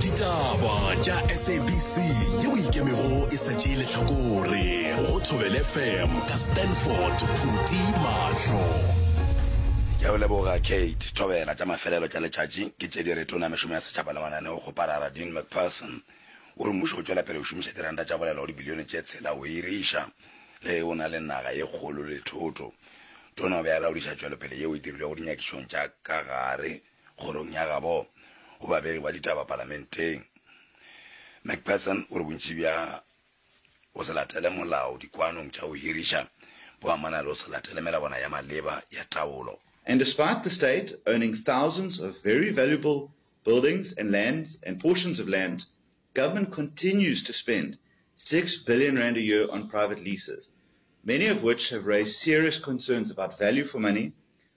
Ditaba tša SABC yeo e ikemego e sa tšee lehlakore go Thobel FM ka Stanford Phuti Mahlo. Ke a go leboga Kate Thobela. Tša mafelelo tša letšatši ke tše di re Tona ya Mešomo ya Setšhaba le Mananeo go parara Dean McPherson o re mmušo o tšwela pele go šomiša diranta tša bolelo go dibilione tše tshela go hiriša le ge o na le naga ye kgolo le thoto. Tona o be a laodiša tšwelopele yeo e dirilwego dinyakišong tša ka gare Kgorong ya gabo go babegi ba ditaba palamenteng, McPherson o re bontši bja go se latele molao dikwanong tša go hiriša bo amana le go se latele melawana ya maleba ya taolo. And despite the state owning thousands of very valuable buildings and lands and portions of land, government continues to spend six billion rand a year on private leases, many of which have raised serious concerns about value for money,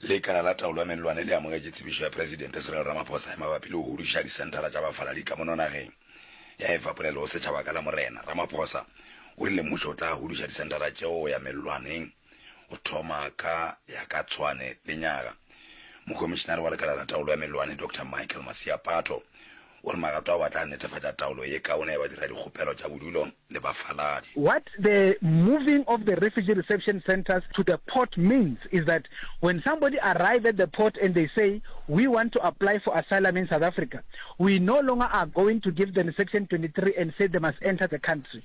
Lekala la Taolo ya Mellwane le amogetše tsebišo ya Presidente Cyril Ramaphosa e mabapi le go huduša disenthara tša bafaladi ka mono nageng. Ya e fa polelo go setšhaba ka Lamorena, Ramaphosa o rile mmušo o tla huduša disenthara tšeo go ya mellwaneng go thoma ka ya ka Tshwane lenyaga. Mokomišinare wa Lekala la Taolo ya Mellwane, Doctor Michael Maseapato, O re magato ao a tla netefatša taolo ye kaone ya badiradikgopelo tša bodulo le bafaladi. What the moving of the refugee reception centres to the port means is that when somebody arrive at the port and they say we want to apply for asylum in South Africa, we no longer are going to give them section 23 and say they must enter the country.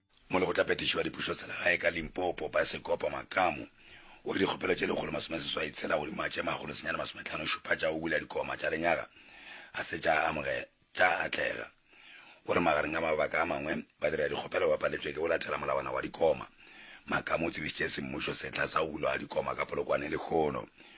Mo Lekgotlaphethiši wa Dipušoselegae ka Limpopo, Paesekopo Makamu, o re dikgopelo tše lekgolo masomeseswai tshela godimo ga tše makgolo senyane masometlhano šupa tša go bula dikoma tša lenyaga ga se tša amoge, tša atlega. O re magareng ga mabaka a mangwe, badiradikgopelo ba paletšwe ke go latela molawana wa dikoma. Makamu o tsebišitše semmušo sehla sa go bulwa ga dikoma ka Polokwane lehono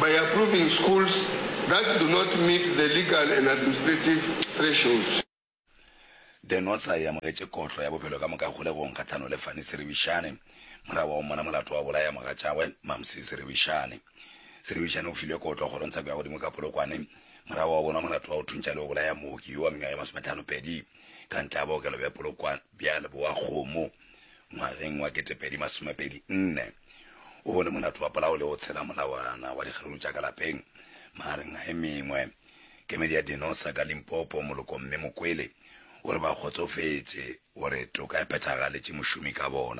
by approving schools that do not meet the legal and administrative thresholds. The Notsa e amogetše kotlo ya bophelo ka moka kgolegong kgahlano le Fanny Seribishane, mora wa ommona molato wa go bolaya mogatšagwe, Mamsie Seribishane. Seribishane o filwe kotlo kgorong tsheko ya godimo ka Polokwane, mora wa obonwa molato wa go thuntša le go bolaya mooki yo wa mengwaga ye masome tlhano pedi ka ntle ga bookelo bja Polokwane. bja Leboakgomo ngwageng wa ketepedi masomepedi nne, o bone molato wa polao le go tshela molawana wa dikgeruru tša ka lapeng, magareng a e mengwe. Kemedi ya Dinosa ka Limpopo, Moloko Mme Mokwele, o re ba kgotsofetše gore toka e phethagaletše mošomi ka bona.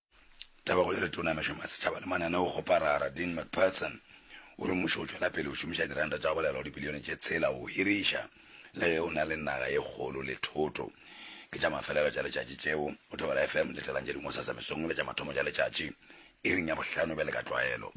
Tabago ya Letona ya Mešomo ya Setšhaba le Mananeo go Parara, Dean McPherson, o re mmušo o tšwela pele o šomiša diranta tša go belaelwa dibilione tše tshela go hiriša le ge o na le naga ye kgolo le thoto. Ke tša mafelelo tša letšatši tšeo, o thobela FM litelang tše dingwe gosasa mesong le tša mathomo tša letšatši iring ya bohlano bjale ka tlwaelo.